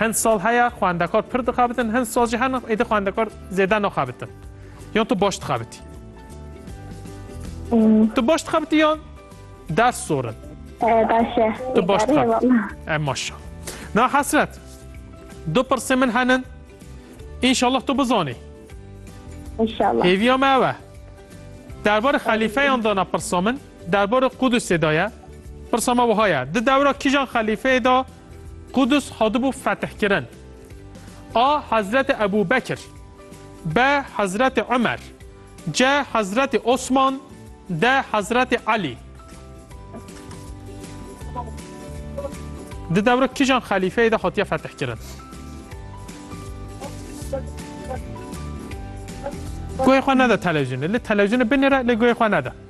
Hin sal heye xwendekar pir dixebitin, hin sal jî hene êdî xwendekar zêde naxebitin. Yan tu baş dixebitî? Tu baş dixebitî yan ders zor in? Baş e. Tu baş dixebitî. E maşa. Na hesret. Du pirsê min henin. İnşallah tu bizanî. İnşallah. Hêviya me ew e. Derbarê xelîfeyan dana pirsa min, derbarê Qudusê da ye. Pirsa me wiha ye. Di dewra kîjan xelîfeyê da Qudus hatibû fetihkirin. A Hezretê Ebû Bekir. B Hezretê Umer. C Hezretê Osman. D Hezretê Elî. Di dewra kijan xelîfeyê de hatiye fetihkirin? Guhê xwe nede televizyonê. Li televizyonê binêre lê guhê xwe nede.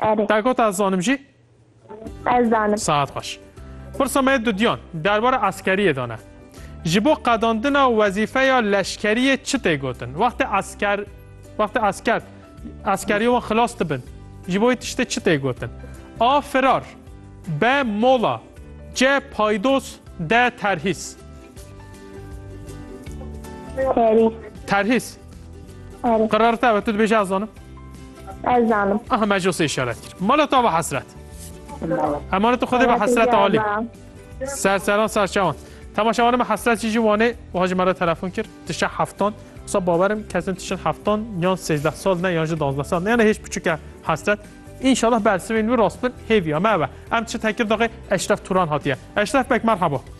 Erê. Te got ez zanim jî? Ez zanim. Saet xweş. Pirsa me dudiyan derbarê eskeriyê de ne. Ji bo qedandina wezîfeya leşkeriyê çi tê gotin? Wextê esker wextê esker eskeriyê wan xilas dibin. Ji bo tiştê çi tê gotin? A. Firar B. Mola C. Paydos D. Terhîs Terhîs. Terhîs. Arif. Qerar te ve tu dibêje ez zanim. Ez zanim. Aha me josê işaret kir. Mala ta ve hesret. Emanet tu xwedê ve hesret alî. Ser seran ser çawan. Temaşa wanê me hesret jî jî wanê wiha ji me re telefon kir. Tişe heftan. Wisa bawerim kesin tişin heftan yan sêzdeh sal ne yan ji danzdeh sal ne yani hêj piçike hesret. İnşallah bersivên wî rast bin hêviya me ve. Em çi tekir daxê Eşref Turan hatiye. Eşref bek merhaba.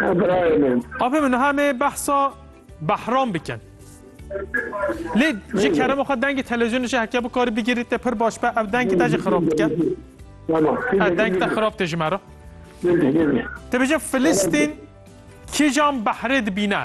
Birayê min. Apê min niha me behsa behram bikin. Lê ji kerema xwe dengê televizyonê jî heke bikarî bigirî te pir baş be ev dengê te jî xirab dike. Ev deng te xirab te ji me re. Te bêje Filistîn kîjan behrê dibîne?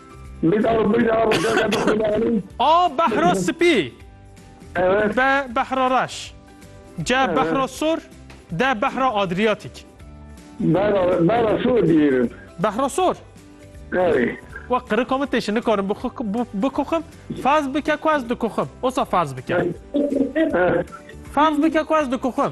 A behra spî B behra reş C behra sor D behra adriyatîk Behra sor diyêrin Behra sor We qirika min têşin nikarim bikoxim ferz bike ku ez dikoxim osa ferz bike ferz bike ku ez dikoxim